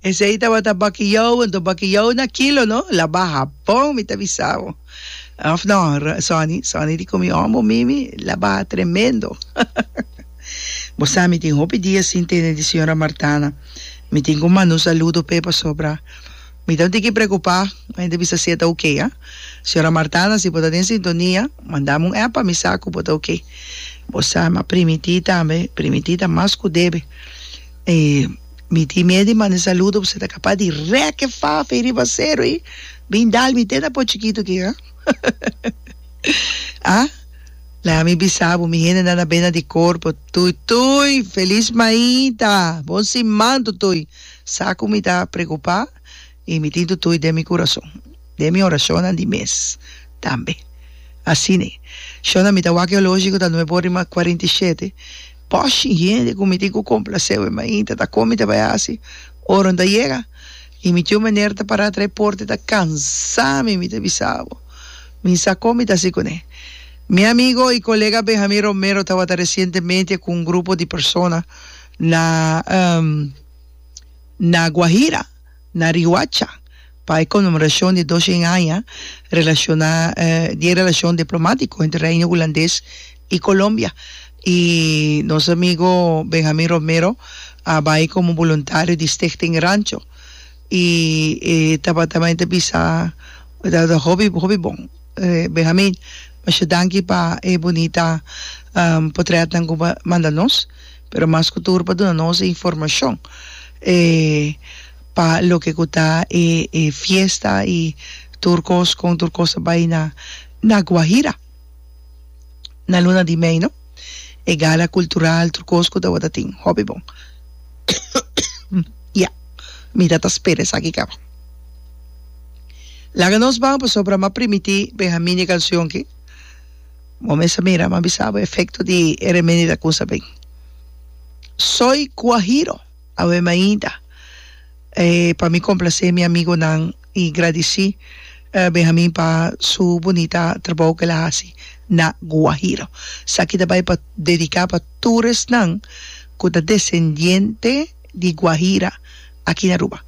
Esei tabata bakiou, anto bakiou na kilo no, la baha bon mi ta bisao, of no Sonny, Sonny di ku mi hom bo mimi la baha tremendo, bo sa mi tin hopi dia sin tene di Señora Martana, mi tin ku manu saludo p'e pasobra. Mi ta un tiki preocupá, ma hende bisa si e ta ok, a. Señora Martana, si bo ta den sintonia, mandam un app pa mi sa cu bo ta ok. Bo sa, mi a primití tambe, primití ta mas cu debe. E mi tin miedu di manda e saludo, bo sa ta capa di rek e faf ei riba acero ei, bin dal mi te na por chikitu aki, a. A. Laga mi bisa bo, mi hende nan a bena di corpo, tuitui, feliz maita, bon siman, tuitui. Sa ku mi ta preokupá i mi tin tutui den mi kurason, den mi orashonnan di mes tambe. Asina e shonnan mi ta wak e oloshi ku ta nue por rima kuarenta i shete, Poshi hende ku mi tin ku komplase we mainta ta kon mi ta bai hasi ora mi ta yega. I mi tiu Meneer ta pará tra e porta i ta kansá mi, Mi ta bisa bo, mi sa kon mi ta hasi kuné. Mi amigo i kolega Benjamín Romero tabata resientemente ku un grupo di persona. Na Na Guajira, na Rihuacha, pa e conmemoracion di dos cien aña relaciona di e relacion diplomático entre Reino Hulandes y Colombia. Y nos amigo Benjamin Romero a bay como voluntario di Stichting Rancho y e tabata mey ta bisa tabata hopi hopi bon. Benjamin, masha danki pa e bunita potretnan cu bo manda nos. pero mas ku tur pa duna nos e informashon e pa loke ku ta e e fiesta i tur kos kon tur kos ta bai na na Guajira na luna di mei no e gala kultural tur kos ku tabata tin hopi bon ya mi ta ta spera esaki kaba laga nos ban pasobra mi a primití Benjamín e kansion ki. Bo mester mira, mi a bisa bo efecto di e remedi ta cusa bey. Soy guajiro, awe mi a yinta pa mi complace mi amigonan y gradici Benjamin pa su bunita trabou cu el a haci na Guajiro. Esaki ta bay pa dedica pa tur esnan cu ta descendiente di Guajira aki na Aruba.